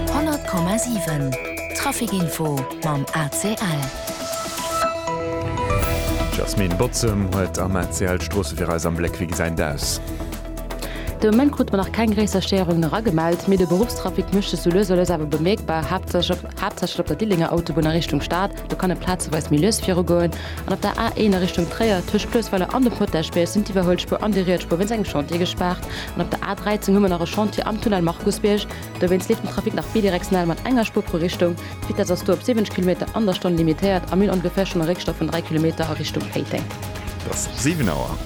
100,7 Trafic Info mam ACL. D'Jasmine Botzem huet am ACL d'Stroosse fir eis am Bléck. Wéi gesäin d'aus? De Moment krute mer nach keng gréisser Stéierungen era gemellt, mee de Beruffstrafic mécht sech sou lues a lues awer bemierkbar, haaptsächlech op der Dillénger Autobunn a Richtung Stad, do kann et plazeweis méi lues virugoen, an op der A1 a Richtung Tréier, tëscht Cloesweiler an dem Potagebierg, sinn d'Iwwerhuelspuer an déi riets Spuer wéinst engem Chantier gespaart. An op der A13 hu mer nach e Chantier am Tunnel Markusbierg. Dowéinst leeft den Trafic nach bidirektional mat enger Spuer pro Richtung. D'Vitess ass do op 70 Kilometer an der Stonn limitéiert a Mil ongeféier schonn e Réckstau vun 3 Kilometer a Richtung Péiteng. Et ass 7 Auer.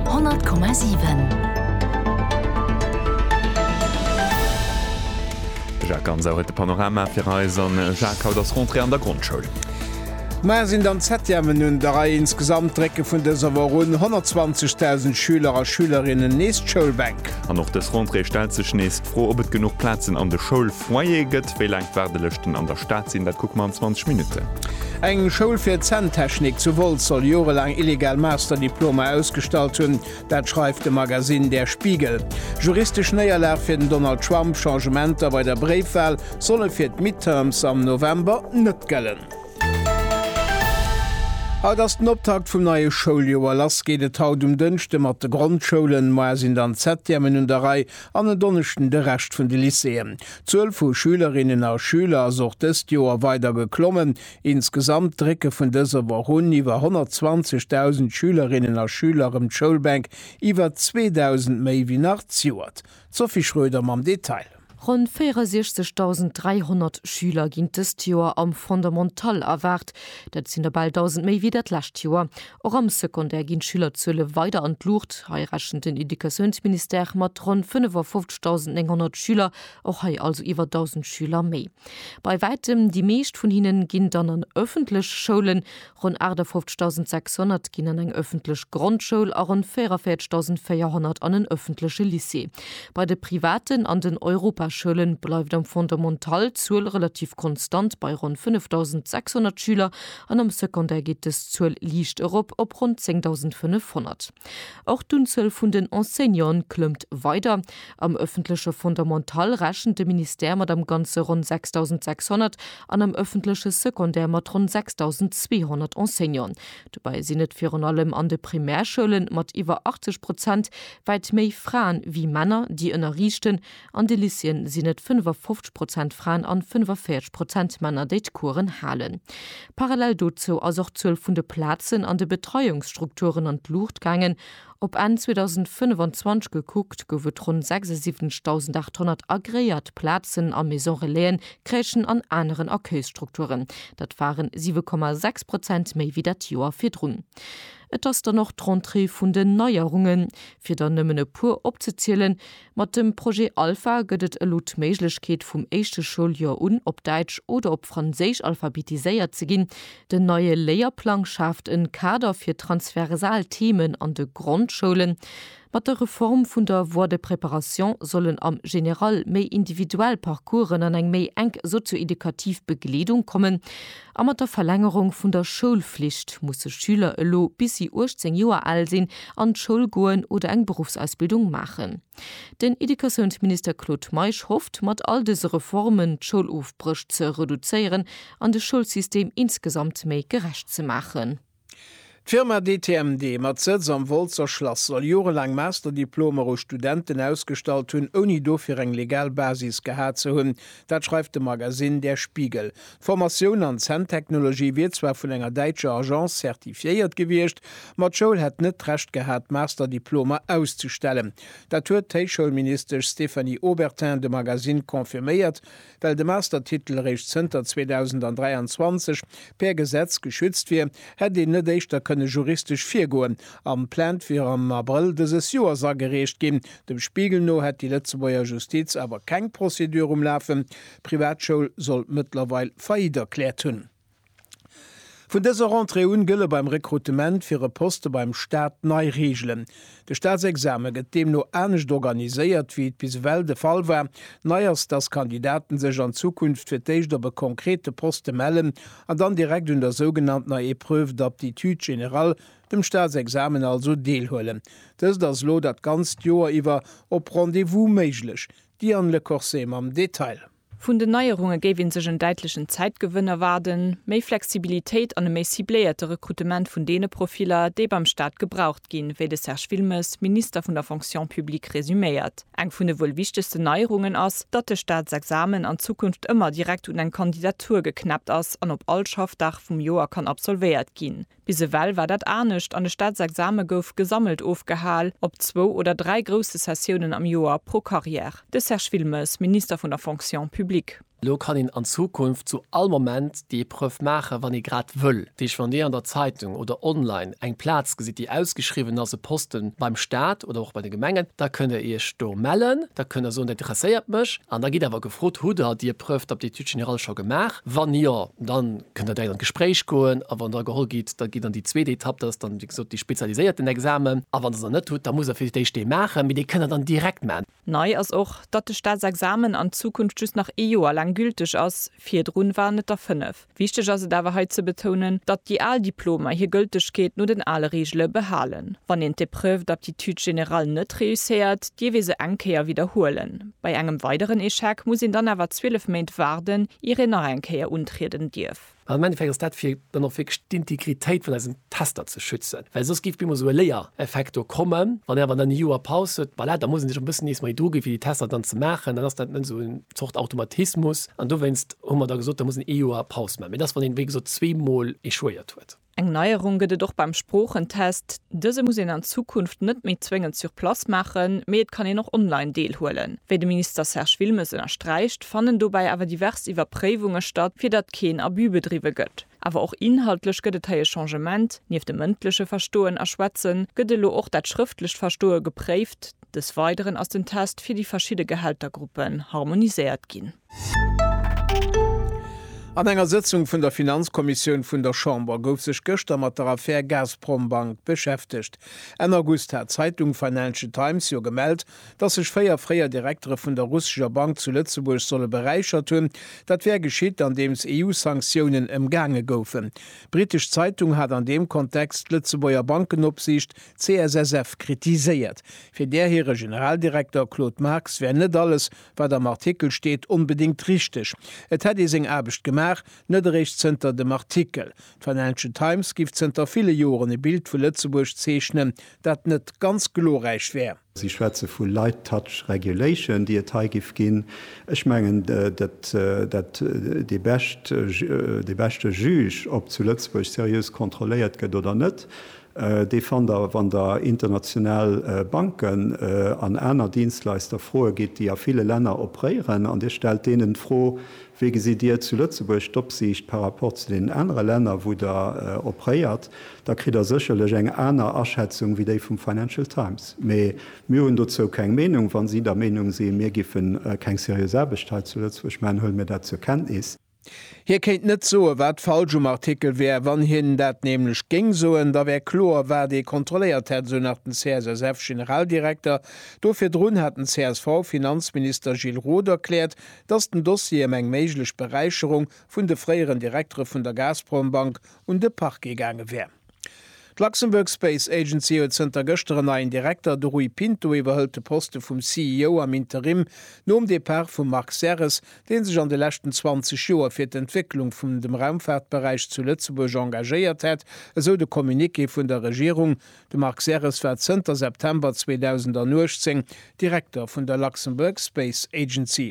100,7. De Jacques Gansau huet de Panorama fir eis. An Jacques, haut ass Rentrée an der Grondschoul. Muer sinn dann d'Septièmen un der Rei. Insgesamt drécke vun dëser Woch un 120.000 Schüler a Schülerinnen nees d'Schoulbänk. An och dës Rentrée stellt sech nees d'Fro, ob et genuch Plazen an de Schoulfoyere gëtt. Wéi laang d'Waardelëschten an der Stad sinn, dat kucke mer an 20 Minutten. Eng Schoul fir Zänntechnik zu Wolz soll jorelaang illegal Masterdiplomer ausgestallt hunn. Dat schreift de Magasinn Der Spiegel. Juristesch Néierlag fir den Donald Trump, Changementer bei der Bréifwal solle fir d'Midterms am November net gëllen. Haut ass den Optakt vum neie Schouljoer. Lass geet et haut um Dënschde mat de Grondschoulen. Moar sinn dann d'Septièmen un der Rei an en Donneschden de Rescht vun de Lycéeën. D'Zuel vu Schülerinnen a Schüler ass och dëst Joer weider geklommen. Insgesamt drécke vun dëser Woch un iwwer 120.000 Schülerinnen a Schüler erëm d'Schoulbänk, iwwer 2.000 méi wéi nach d'Joert D'Sophie Schroeder mam Detail. Ronn 64.300 Schüler ginn dëst Joer am Fondamental erwaart. Dat sinn der bal 1.000 méi wéi dat lescht Joer. Och am Secondaire ginn d'Schülerzuele weider an d'Luucht. Hei rechent den Educatiounsministère mat ronn 55.900 Schüler, och hei also iwwer 1.000 Schüler méi. Bei wäitem déi meescht vun hinnen ginn dann an ëffentlech Schoulen. Ronn 58.600 ginn an eng ëffentlech Grondschoul a ronn 44.400 an en ëffentleche Lycée. Bei de privaten an den Europaschoule bleift am Fondamental d'Zuel relativ konstant bei ronn 5.600 Schüler an am Secondaire geet dës Zuel liicht erop op ronn 10.500. Och d'Unzuel vun den Enseignanten klëmmt weider. Am ëffentleche Fondamental rechent de Ministère mat am Ganze ronn 6.600 an am ëffentleche Secondaire mat ronn 6.200 Enseignanten. Dobäi sinn et virun allem an de Primärschoulen, mat iwwer 80 Prozent, wäit méi Fraen wéi Männer, déi ënnerriichten. An de Lycéeën sinn et 55 Prozent Fraen an 45 Prozent Männer, déi d'Coursen halen. Parallel dozou ass och d'Zuel vun de Plazen an de Betreiungsstrukturen an d'Luucht gaangen. Op Enn 2025 gekuckt, gouf et ronn 76.800 agreéiert Plazen a Maison-relaisen, Crèchen an aneren Accueilsstrukturen. Dat waren 7,6 Prozent méi wéi dat Joer virdrun. Et ass dann och d'Rentrée vun den Neierungen. Fir der nëmmen e puer opzezielen. Mat dem Projet Alpha gëtt et elo d'Méiglechkeet vum éischte Schouljoer un op Däitsch oder op Franséisch alphabetiséiert ze ginn. Den neie Léierplang schaaft en Kader fir transversal Themen an de Grondschoulen. Mat der Reform vun der Voie de préparation sollen am General méi individuell Parcoursen an eng méi enk sozio-edukativ Begleedung kommen. A mat der Verlängerung vun der Schoulflicht musse Schüler elo bis si 18 Joer al sinn an d'Schoul goen oder eng Beruffsausbildung maachen. Den Educatiounsminister Claude Meisch hofft, mat all dëse Reformen d'Schoulofbréch ze reduzéieren an de Schoulsystem insgesamt méi gerecht ze maachen. D'Firma DTMD mat Sëtz am Woltzer Schlass soll jorelaang Masterdiplomer u Studenten ausgestallt hunn, ouni dofir eng legal Basis gehat ze hunn. Dat schreift de Magasinn Der Spiegel. D'Formatioun an Zänntechnologie wier zwar vun enger däitscher Agence zertifiéiert gewiescht, ma d'Schoul hätt net d'Recht gehat, Masterdiplomer auszustellen. Dat huet d'Héichschoulministesch Stéphanie Obertin dem Magasinn confirméiert, Well de Mastertitel eréischt zënter 2023 per Gesetz geschützt wier, hätt een net éischter kënne juristesch virgoen, an d'Plainte wier am Abrëll dëses Joers agereecht ginn. Dem Spiegel no hätt déi Lëtzebuerger Justiz awer keng Procédure um Lafen, d'Privatschoul sollt mëttlerweil Faillite erkläert hunn. Vun dëser Rentrée un gëlle beim Rekrutement fir e Poste beim Staat nei Reegelen. De Staatsexame gëtt deemno anescht organiséiert, wéi et bis ewell de Fall war. Nei ass, dass Kandidaten sech an Zukunft fir d'éischt op e konkrete Poste mellen an dann direkt un der sougenanntener Épreuve d'aptitude générale, dem Staatsexamen also, deelhuelen. Dëst ass elo dat ganzt Joer iwwer op Rendez-vous méiglech. Diane Lecorsé mam Detail. Vun den Neierunge géif ee sech en däitlechen Zäitgewënn erwaarden, méi Flexibilitéit an e méi cibléierte Rekrutement vun deene Profiller, déi beim Staat gebraucht ginn, wéi de Serge Wilmes, Minister vun der Fonction publique resuméiert. Eng vun de wuel wichtegsten Neierungen ass, datt de Staatsexamen an Zukunft ëmmer direkt un eng Kandidatur geknäppt ass an op all Schaffdag vum Joer kann absolvéiert ginn. Bis ewell war dat anescht an de Staatsexame gouf gesammelt ofgehal, op zwou oder dräi grousse Sessiounen am Joer pro Carrière. De Serge Wilmes, Minister vun der Fonction publique. Elo kann een an Zukunft zu all Moment déi Epreuve maachen, wann ee grad wëll. Dat heescht, wann Dir an der Zeitung oder online eng Plaz gesitt, déi ausgeschriwwen ass, e Poste beim Staat oder och bei de Gemengen, da kënnt Der Iech do mellen. Da kënnt Der soen, dat interesséiert mech. An da gitt awer gefrot, Hutt Der déi Epreuve d'aptitude générale scho gemaach? Wann jo, dann kënnt der direkt an d'Gespréich goen a wann der geholl gitt, da gitt an déi zweet Etapp, dat ass dann, wéi gesot, dee spezialiséierten Examen a wann der se net hutt, da musst der fir d'éischt dee maachen, mee dee kënnt der dann direkt maachen. Nei ass och, datt de Staatsexamen an Zukunft just nach ee Joer laang gülteg ass, virdrun waren et der fënnef. Wichteg ass et awer hei ze betounen, datt déi al Diplomer hir Gëltegkeet no den ale Reegele behalen. Wann een d'Épreuve d'aptitude générale net réusséiert, dierf ee se eng Kéier widderhuelen. Bei engem weideren Echec muss een dann awer 12 Méint waarden, ier een nach eng Kéier untrieden dierf. An am Endeffekt ass dat, fir dann och wierklech d'Integritéit vun eisen Tester ze schützen, well soss géif op eemol esou e Léiereffekt do kommen. Wann een awer dann e Joer Paus huet, voilà, da muss een sech och e bëssen nees méi druginn, fir déi Tester dann ze maachen. Dann ass dat net esou eng Zort Automatismus. An dowéinst hu mer da gesot, da muss een ee Joer Paus maachen. Mee dat ass, wann een, wéi gesot, zweemol échouéiert huet. Eng Neierung gëtt et och beim Sproochentest. Dëse muss een an Zukunft net méi zwéngend sur place maachen, mee et kann een och online deelhuelen. Wéi de Minister Serge Wilmes ënnersträicht, fannen dobäi awer divers Iwwerpréiwunge statt, fir datt keen Abus bedriwwe gëtt. Awer och inhaltlech gëtt et hei e Changement, Nieft dem mëndleche Verstoen a Schwätzen gëtt elo och dat schrëftlecht Verstoe gepréift. Des Weideren ass den Test fir déi verschidde Gehältergruppen harmoniséiert ginn. An enger Sëtzung vun der Finanzkommissioun vun der Chamber gouf sech gëschter mat der Affär Gazprombank beschäftegt. Enn August hat d'Zeitung Financial Times jo gemellt, datt sech véier fréier Direktere vun der russescher Bank zu Lëtzebuerg solle beräichert hunn. Dat wär geschitt, andeems EU-Sanktiounen ëmgaange goufen. D'britesch Zeitung hat an deem Kontext d'Lëtzebuerger Bankenopsiicht, CSSF, kritiséiert. Fir där hire Generaldirekter Claude Marx wär net alles, Wat am Artikel steet, onbedéngt richteg. Et hätt ee seng Aarbecht gemaach, net eréischt zënter dem Artikel. D'Financial Times géif zënter ville Joren e Bild vu Lëtzebuerg zeechnen, dat net ganz glorräich wär. Si schwätze vu light touch regulation, déi et hei géif ginn. Ech mengen, datt dee beschte Juge, ob zu Lëtzebuerg seriös kontrolléiert gëtt oder net, Dee fannt Der, wann Der international Banken an aner Dienstleister froe gitt, déi a ville Länner operéieren, an Dir stellt deenen d'Fro, Wéi gesitt Dir zu Lëtzebuerg d'Opsiicht par rapport zu deenen anere Länner, wou Der operéiert? da kritt Der sécherlech eng aner Aschätzung wéi déi vum Financial Times. Mä mir hunn dozou keng Meenung. Wa si der Meenung sinn, mir géife keng seriös Aarbecht hei zu Lëtzebuerg maachen, huele mir dat zur Kenntnis. Hie kéint net soen, wat falsch um Artikel wär. Wann hien dat nämlech géing soen, da wär kloer, wat ee kontrolléiert hätt, esou nach den CSSF-Generaldirekter. Do virdrun hat den CSV-Finanzminister Gilles Roth erkläert, datt den Dossier ëm eng méiglech Beräicherung vun de fréieren Direktere vun der Gazprom-Bank un de Parquet gaange wär. D'Luxembourg Space Agency huet zënter gëschter en neien Direkter, de Rui Pinto iwwerhëlt de Poste vum CEO am Interim nom Depart vum Marc Serres, dee sech an de leschten 20 Joer fir d'Entwécklung vum dem Raumfaartberäich zu Lëtzebuerg engagéiert hätt, esou de Communiqué vun der Regierung. De Marc Serres war zënter September 2018 Direkter vun der Luxembourg Space Agency.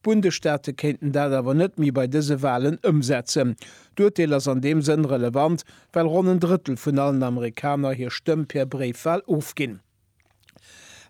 D'Bundesstaate kéinten dat awer net méi bei dëse Walen ëmsetzen. D'Urteel ass an deem Sënn relevant, well ronn en Drëttel vun allen Amerikaner hir Stëmm per Bréifwal ofginn.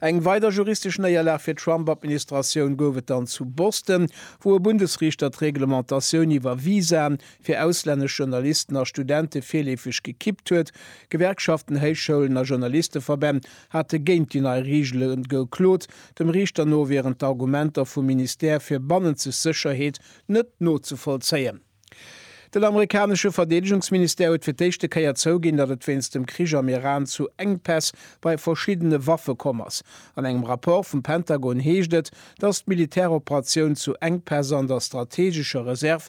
Eng weider juristesch Néierlag fir d'Trump-Administratioun gouf et dann zu Boston, wou e Bundesriichter d'Reglementatioun iwwer Visaen fir auslännesch Journalisten a Studente virleefeg gekippt huet. Gewerkschaften, Héichschoulen a Journalisteverbänn hate géint déi nei Reegele geklot. Dem Riichter no wieren d'Argumenter vum Ministère fir bannenzeg Sécherheet net nozevollzéien. Den amerikanesche Verdeedegungsministère huet fir d'éischte Kéier zouginn, datt et wéinst dem Krich am Iran zu Enkpäss bei verschiddene Waffe komm ass. An engem Rapport vum Pentagon heescht et, datt d'Militäroperatioun zu Enkpäss an der strateegescher Reserv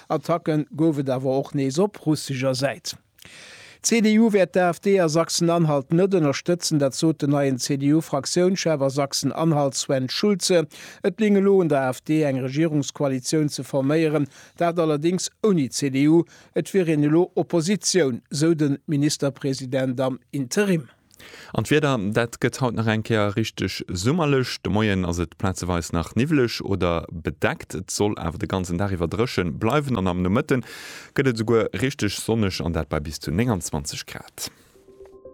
Attacke gouf et awer och nees op russescher Säit. D'CDU wäert d'AfD a Sachsen-Anhalt net ënnerstëtzen, dat sot den neien CDU-Fraktiounschef a Sachsen-Anhalt Sven Schulze. Et léing elo un der AfD eng Regierungskoalitioun ze forméieren, dat allerdéngs ouni d'CDU. Et wier een elo Oppositioun, sou de Ministerpresident am Interim. An d'Wieder, dat gëtt haut nach eng Kéier richteg summerlech. De Moien ass et plazeweis nach niwweleg oder bedeckt, et soll awer de ganzen Dag iwwer dréche bleiwen an am Nomëtte gëtt et esouguer richteg sonneg an dat bei bis zu 29 Grad.